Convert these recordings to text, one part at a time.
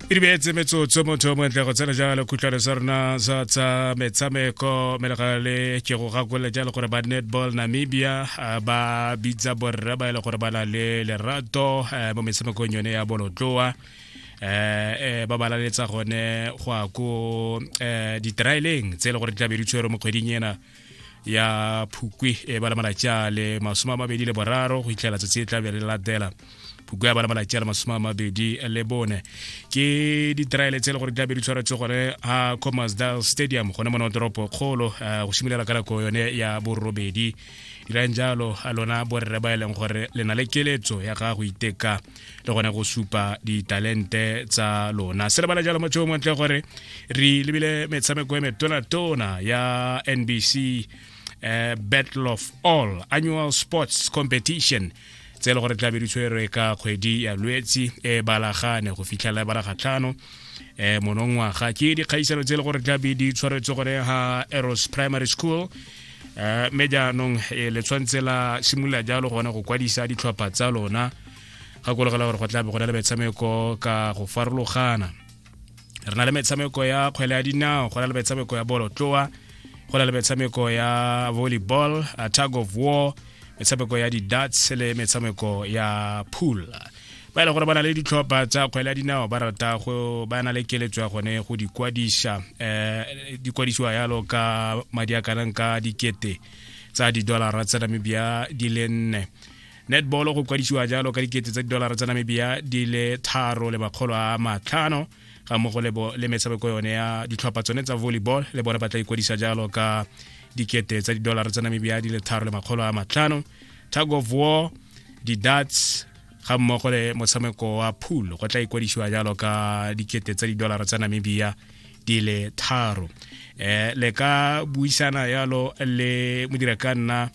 e di beetse metsotso motho o montle go tsena jalo khutlhwane sa rona sa tsa metshameko mme le ke go gakolole jalo gore ba netball namibia ba bitsa borre ba e le gore ba na le lerato mo metshamekong yone ya bolotloa eh ba balaletsa gone go ya ko ditraeleng tse e le gore di tla be di tshwere mo kgweding ena ya phukwi e bala malatsi a le masome a mabedi le boraro go fitlhela tsatsi e tla be le latela phukwi ya bala malatsi a le masome a mabedi le bone ke ditraele tse e le gore tlabe di tshwaretse gone a commasdal stadium gone mona toropo kgolo eh, go simolola ka nako yone ya borobedi dirang jalo a lona borre ba e leng gore le na le keletso ya gago iteka le gona go supa ditalente tsa lona se lebala jalo motho o montle gore re lebile metshameko e metona-tona ya nbc uh, battle of all annual sports competition tse e le gore tlabe di tshwerwe ka kgwedi ya lwetsi e balagane go fitlhelela e balagatlhano um monongwaga ke dikgaisano tse e le gore tlabe di tshwaretswe gone ga eros primary school um mme jaanong eh, le tshwanetse la simolola jalo gone go kwadisa ditlhopha tsa lona gakologela gore go tla be go na le metshameko ka go farologana re na le metshameko ya kgwele ya dinao go na le metshameko ya bolotloa go na le metshameko ya volleyball a tag of war metshameko ya di-dats le metshameko ya pool ba e le gore ba na le ditlhopha tsa kgwele ya dinao ba rata go ba na le keletso ya gone go di kwadisa um dikwadisiwa yalo ka madi a kanang ka dikete tsa didolara tsa namibia di le nne netball go kwadisiwa jalo ka dikete tsa didolara tsa namibia di le tharo le makgolo a matlhano ga mmogo le metshameko yone ya ditlhopha tsone tsa volleyball le bone ba tla ikwadisa jalo ka dikete tsa didolara tsa namibia di le tharo le makgolo a matlhano tag of war di-dats ga mmogo le motshameko wa pool go tla ikwadisiwa jalo ka dikete tsa didolara tsa namibia di le tharo um le ka buisana yalo le modira ka nna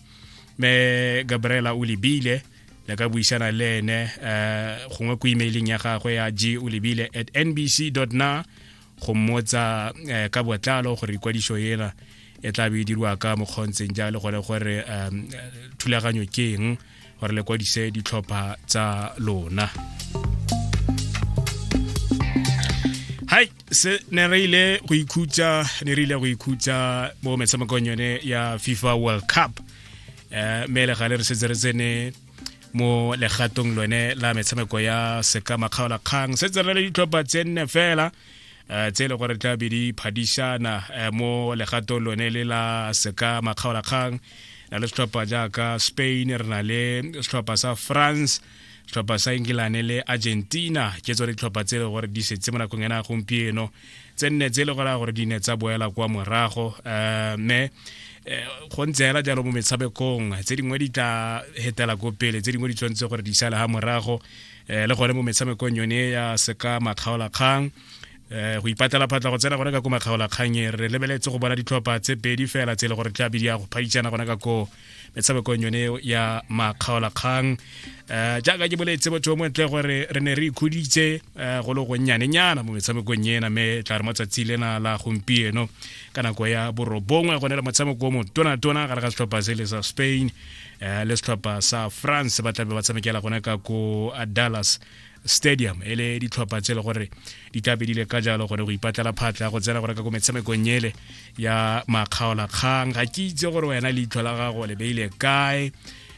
me gabriela o lebile le ka buisana le ene um gongwe ko emailing ya gagwe ya g o lebile at nbc na go mmotsa um ka botlalo gore ikwadiso ena e tla be e dirwa ka mokgontseng jalo gone gore um thulaganyo ke eng gore le kwadise ditlhopha tsa lona se ne re ile go ikhutsa ne re ile go ikhutsa mo metshamekong yone ya fifa world cup um mme le gale re setse re tsene mo legatong lone la metshameko ya seka makgaolakgang setse re le ditlhopha tse nne fela um tse e le gore tla be di phadišana um mo legatong lone le la seka makgaolakgang na le setlhopha jaaka spain re na le setlhopha sa france tlhopha sa engilane le argentina ke tsone ditlhopha tse e le gore di setse mo nakong ena gompieno tse nne tse e le gore gore di ne tsa boela kwa morago um mme eh, go ntse hela jalo mo metshamekong tse dingwe di tla hetela ko pele tse dingwe di tshwanetse gore di sale ga morago um le gone mo metshamekong yone ya seka makgaolakgang um go ipatela phatla go tsena gone ka ko makgaolakgang e re lebeletse go bona ditlhopha tse pedi fela tse e le gore tlabe di ya go phaditsana gona ka koo metshamekong yone ya makgaolakgang um jaaka ke boletse motho o montle gore re ne re ikhuditse um go le gonnyanenyana mo metshamekong ena mme tla re mo tsatsi lena la gompieno ka nako ya borobongwe go ne le motshameko o motonatona gare ga setlhopha se le sa spain um le setlhopha sa france ba tlabe ba tshamekela gone ka ko dallas stadium e le ditlhopha tse e le gore di tla be di le ka jalo gore go ipatlela phatla go tsena go reka ko metshamekong ele ya makgaolakgang ga ke itse gore wena leitlho la gago le beile kae